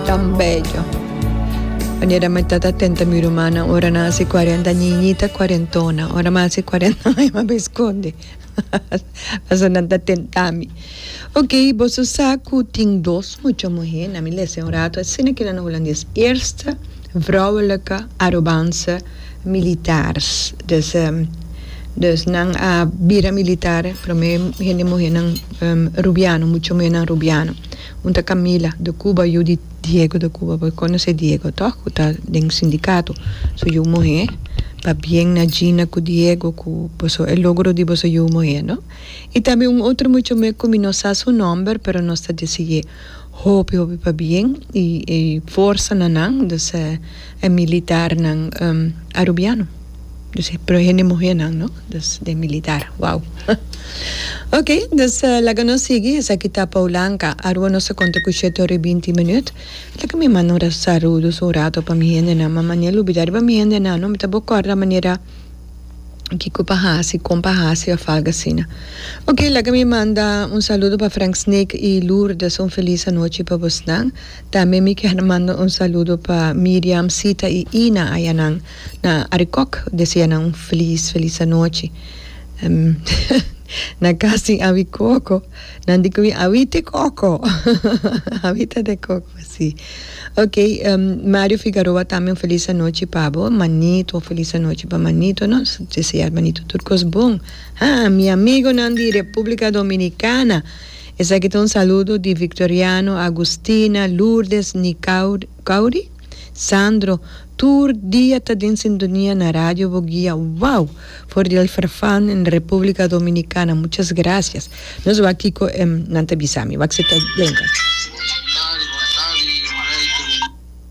Tan bello. Wanneer dat mi ta ta tenta mi rumannan ora nan a hasi cuarenta ñiñita cuarentona ora mi a hasi cuarenta aña mi a bin scondi pasobra nan ta tenta mi ok boso sa cu tin dos mucha muher na mi lesa un rato asina kila na hulandes eerste vrouwelijke Arubanse militares dus dus nan a bira militar prome hende muhernan rubiano mucha muhernan rubiano. Punta Camila de Cuba yu di Diego de Cuba por conoce Diego to cu ta den sindicato su yu muhe pabien na Gina cu Diego cu boso e logro di boso yu muhe no y tambe un otro mucho me cu mi no sa su nomber pero nos ta deseye hopi hopi pabien y forsa na nan. e militarnan arubiano dus e puro hende muhernan no dus den militar wow ok dus laga nos sigui esaki ta Poulanka Arua nos a konta ku shete ora i binti minüt laga mi manda un ra sarudus un rato pa mi hendenan mama ni a lubida riba mi hendenan no mi ta bo kòrda manera kiko pa hasi kon pa hasi òf algu asina ok laga mi manda un saludo pa Frank Snake i Lourdes un felis anochi pa bosnan. Tambe mi kier manda un saludo pa Miriam, Sita y Ina ayanan na Arikok. Desea nan un feliz feliz anochi. Na casi awi coco. Nan di comi awi te coco. Awi ta te coco si. Ok Mario Figaroa tambe un feliz anochi pa bo. Manito un feliz anochi pa manito. Nos desear manito tur cos bon. Ha mi amigonan di Republica Dominicana Esaki ta un saludo di Victoriano, Agustina, Lourdes, Nicauri, Sandro, tur dia ta den sintonia na Radio Boguia, wow! For di El Farfan en Republica Dominicana, muchas gracias. No sa wak kiko nan ta bisa mi, wak si ta denka.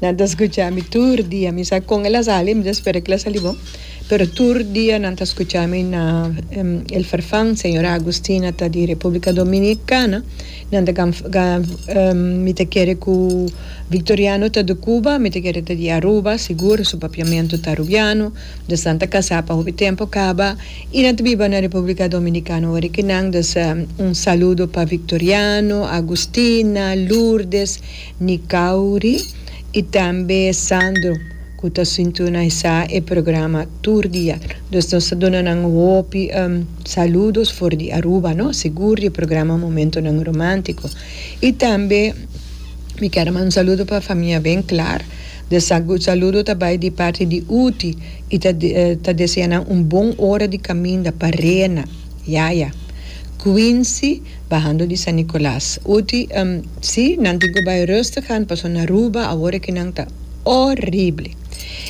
Nan ta scucha mi tur dia. Mi sa con el a sali, mi ta spera cu el a sali bon, pero tur dia nan ta scucha mi na el farfan, Señora Agustina ta di Republica Dominicana, nan ta mi ta kere cu Victoriano ta di Cuba, mi ta kere ta di Aruba, sigur, su papiamento ta Arubiano, mi ta stanta casa pa hopi tempo caba. I nan ta biba na Republica Dominicana wor ik nan dus un saludo pa Victoriano, Agustina, Lourdes, Nicauri i tambe Sandro cu ta sintonaisa e programa tur dia. Dus nos ta duna nan hopi saludos for di Aruba no, sigur di e programa Momentonan Romantico. I tambe mi ker manda un saludo pa famia Benclar. De saludo ta bai di parti di Uti y ta desea nan un bon ora di caminda pa Rena, Yaya, Quincy bahando di San Nicolas. Uti, Si, nan tin cu bai rustig gaan paso na Aruba awor aki nan ta horrible.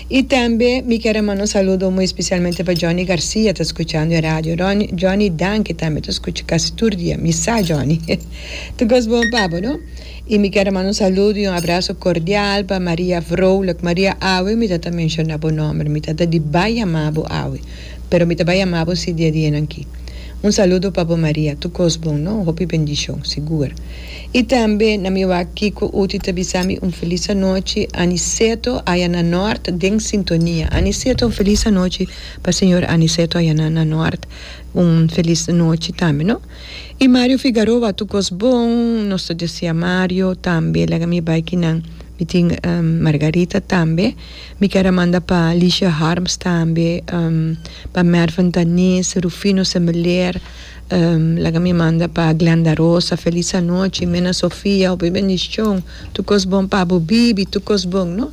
Y tambe mi kier a manda un saludo muy especialmente pa Johnny Garcia ta scuchando e radio. Johnny, danki tambe ta scucha casi tur dia. Mi sa Johnny. Tur cos bon pa bo, no? Y mi quier a manda un saludo y un abrazo cordial pa Maria Vrolijk. Maria awe mi ta ta menciona bo nomber, mi ta ta di bay yama bo awe, pero mi ta bay yama bo si dia di hennan ki. Un saludo pa bo Maria, tur cos bon no, hopi bendicion, sigur. Y tambe na mi wak Kiko Uti ta bisa mi un feliz anochi, Aniceto aya na Noord den sintonia. Aniceto un feliz anochi pa señor Aniceto aya na Noord, un feliz nochi tambe no. Y Mario Figaroa tu cos bon nos ta deci a Mario tambe laga mi bay ki nan mi tin Margarita tambe mi ker a manda pa Licia Harms tambe pa Mervin Tanis Rufino Semeler laga mi manda pa Glenda Rosa feliz anochi Mena Sofia hopi bendicion tu cos bon pa abo Bibi tu cos bon no.